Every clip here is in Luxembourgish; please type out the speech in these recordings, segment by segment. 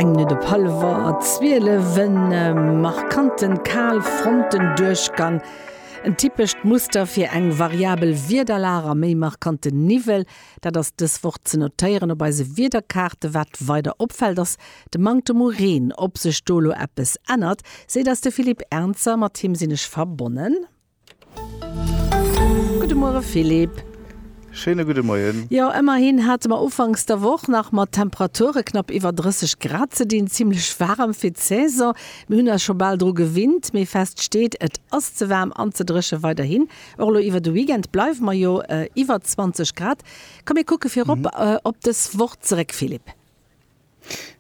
Eng Minutt op halwer 12, en markanten Kaalfrontendurchgang, en typescht Muster fir eng variabel Wiederlag a méi markante Niwwel. Dat ass dës Woch ze notéieren op eise Wiederkaarten. Wat weider opfält, ass de Manktem u Reen. Ob sech do elo eppes ännert, seet eis de Philippe Ernzer, mat him sinn ech verbonnen. Gudde Muere Philippe. Schéine gudde Moien. Jo, ëmmerhin hate mer ufanks der Woch nach mat Temperature knapp iwwer 30 Grad ze dinn. Zimmlech waarem fir d'Saison. Mir hunn eis scho bal dru gewinnt, mee fest steet, et ass ze waarm an ze dréche weiderhin. Och elo iwwer de Weekend bleiwe mer jo iwwer 20 Grad. Komm mir kucke virop op dës Woch zeréck Philippe.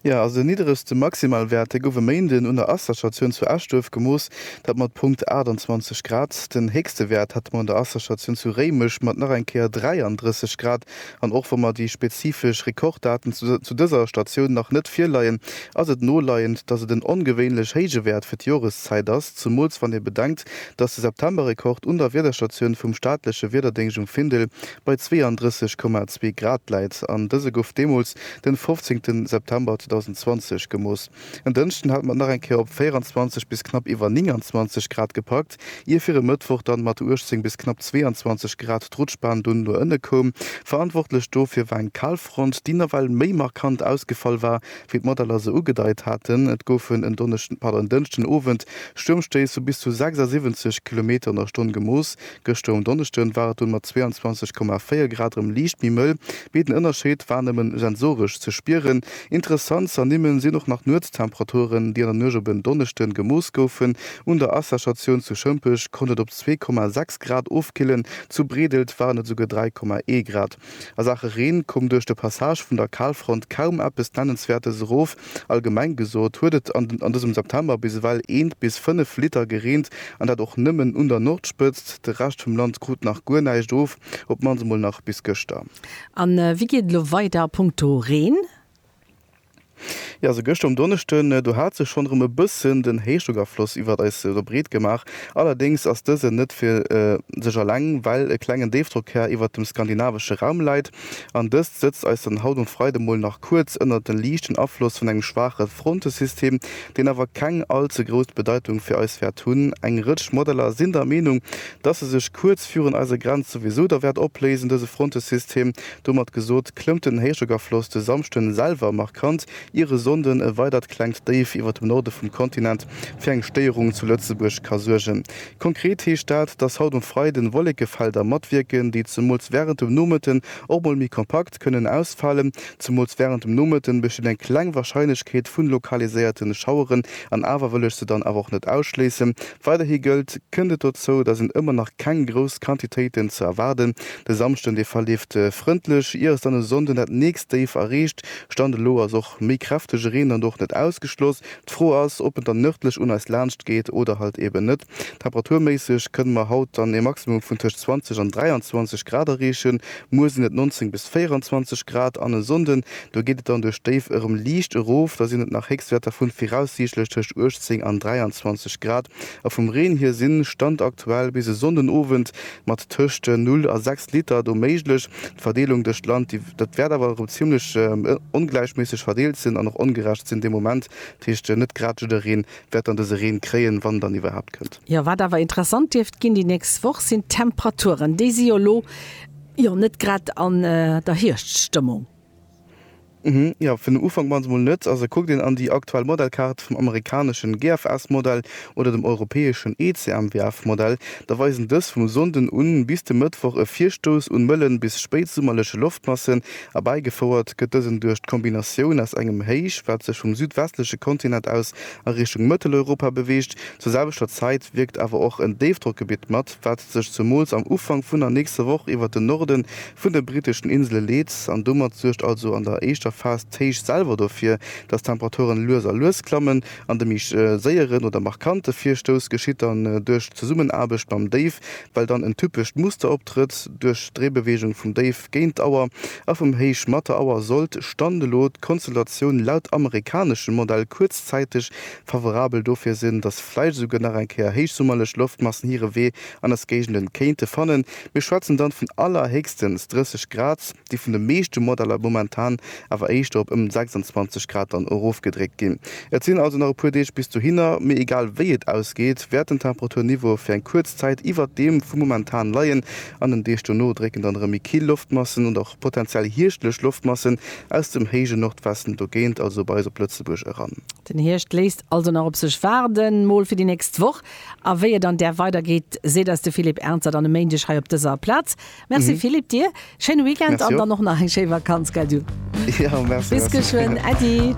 Jo, also nidderegste Maximalwäerte gouf e Méinden un der Asserstatioun zu Eschduerf gemooss, dat mat Punkt 28 Grad. Den héchste Wäert hate mer un der Asserstatioun zu Réimech mat nach eng Kéier 33 Grad. An och wa mer déi spezifesch Rekorddaten zu dëser Statioun nach net virleien, ass et noleiend, datt et en ongewéinlech héije Wäert fir d'Joreszäit ass, zemools wann ee bedenkt, datt de Septemberrekord un der Wiederstatioun vum staatleche Wiederdéngscht um Findel bei 32,2 Grad läit an dëse gouf deemools den 15 September 2020 gemooss. En Dënschden hat mat nach eng Kéier op 24 bis knapp iwwer 29 Grad gepackt, ier fir e Mëttwoch dann mat 18 bis knapp 22 Grad d'Rutschbahn dunn no ënne koum. Verantwortlech dofir war eng Kalfront, déi nawell méi markant ausgefall war, wéi d'Modeller se ugedeit haten. Et goufen en Donneschden, pardon, en Dënschden Owend Stuermstéiss vu bis zu 76 Kilometer an der Stonn gemooss, Gëschter um Donneschden war et dunn mat 22,4 Grad erëm liicht méi mëll, mee den Ënnerscheed war nëmme sensoresch ze spieren. Interessant ze ernimmen sinn och nach d'Nuetstemperaturen, déi an der Nuecht op en Donneschden gemooss goufen. Un der Asserstatioun zu Schëmpech konnt et op 2,6 Grad ofkillen, zu Bredelt waren et esouguer 3,1 Grad. A Saache Reen koum duerch de Passage vun der Kalfront kaum eppes Nennenswäertes erof. Allgemeng gesot huet et an dësem September bis ewell eent bis fënnef Liter gereent an dat och nëmmen un der Nordspëtzt. De Rescht vum Land krut nach guer näischt of, op d'mannst emol nach bis gëschter. A wéi geet et elo weider a punkto Reen? Jo, esou gëschter um Donneschden, do hat sech schonn erëm e bëssen den Héichdrockafloss iwwert eis do breet gemaach. Allerdéngs ass dësen net fir sech eleng, well e klengen Déifdrockkär iwwert dem skandinavesche Raum läit an dëst sëtzt eis dann haut um Freide mol nach kuerz ënnert de liichten Afloss vun engem schwaache Frontesystem, deen awer keng all ze grouss Bedeitung fir eis wäert hunn. Eng Rëtsch Modeller sinn der Meenung, dass e sech kuerz virun eiser Grenz souwisou da wäert opléisen, dëse Frontesystem, Domat gesot, klëmmt den Héichdrockafloss de Samschden selwer markant, ier e Sonnden e weidert klengt Déif iwwert dem Norde vum Kontinent fir eng Stéierung zu Lëtzebuerg ka suergen. Konkret heescht dat, dass haut um Freiden Wollekefelder matwierken, déi zemools während dem Nomëtten och mol méi kompakt kënnen ausfalen. Zemools während dem Nomëtten besteet eng kleng Warscheinlechkeet vun lokaliséierten Schaueren, an awer wëll ech se dann awer och net ausschléissen, Weiderhi gëllt, Kënnt et dozou, da sinn ëmmer nach keng grouss Quantitéiten ze erwaarden. De Samschden, dee verleeft frëndlech, ier es dann e Sonnden dat nächst Déif erreecht. Stand elo ass och méi kräftege Reen dann och net ausgeschloss. D'Fro ass, ob en dann nërdlech un eis laanscht geet oder halt eben net. Temperaturméisseg kënne mer haut dann e Maximum vun tëscht 20 an 23 Grad erreechen, muer sinn et 19 bis 24 Grad an e Sonnden, Do geet et dann duerch d'Déif erëm liicht erof, da sinn et nach Héchstwäerter vu viraussiichtlech tëscht 18 an 23 Grad. A vum Reen hier sinn, Stand aktuell, bis e Sonnenowend mat tëscht 0 a 6 Liter do méiglech. D'Verdeelung duerch d'Land, déi wäert awer erëm zimmlech ongläichméisseg verdeelt sinn an och ongerecht sinn dee Moment. Dat heescht, net grad jiddereen wäert dann dëse Reen kréien, wann en dann iwwerhaapt kënnt. Jo, wat awer interessant dierft ginn déi nächst Woch, sinn d'Temperaturen. Déi si jo elo. Jo net grad an der Hierschtsstëmmung. Uhmm jo fir den Ufank mol mol net. Also kuckt een an déi aktuell Modellkaart vum amerikaneschen GFS Modell oder dem europäeschen ECMWF Modell, da weisen dës vum Sonnden un bis de Mëttwoch e Virstouss un mëllen bis spéitsummerleche Loftmassen. Erbäigefouert gëtt dësen duerch d'Kombinatioun aus engem Héich wat sech vum südwestleche Kontinent aus a Richtung Mëtteleuropa beweegt. Zur selwechter Zäit wierkt awer och en Déifdrockgebitt mat wat sech zemools am Ufank vun der nächster Woch iwwert den Norde vun de britteschen Insele leet an domat suergt also an der éischter Phas d'Héicht selwer dofir, dass d'Temperaturen lues a lues klammen an de méi séieren oder markante Virstouss geschitt dann duerch d'Zesummenaarbecht mam Déif, well dann en typescht Muster optrëtt, duerch d'Dréibeweegung vum Déif géint d'Auer a vum Héich mat der Auer, sollt, Stand elo, d'Konstellatioun laut amerikaneschem Modell kuerzzäiteg favorabel dofir sinn, datt vläicht esouguer nach eng Kéier héichsummerlech Loftmassen hire Wee an eis Géigenden kéinte fannen. Mir schwätzen dann vun allerhéchstens 30 Grad, déi vun de meeschte Modeller momentan awer éischter op ëm 26 Grad dann erofgedréckt ginn. Et sinn also nach e puer Deeg bis dohinner, mee egal wéi et ausgeet, wäert den Temperaturniveau fir eng kuerz Zäit iwwert deem vum momentan leien. An den Deeg dono drécken dann erëm méi kill Loftmassen und och potenziell hierschtlech Loftmassen Aus dem héije Nordwesten dogéint, also bei eis op Lëtzebuerg eran. Den Hierscht léisst also nach op sech waarden, mol fir déi nächst Woch. A wéi et an där weidergeet, seet eis de Philippe Ernzer dann e Méindeg hei op dëser Plaz. Merci Philippe, dir schéine Weekend an dann och nach eng schéi Vakanz, gell du? Jo, merci, merci. Bis geschwënn, Äddi.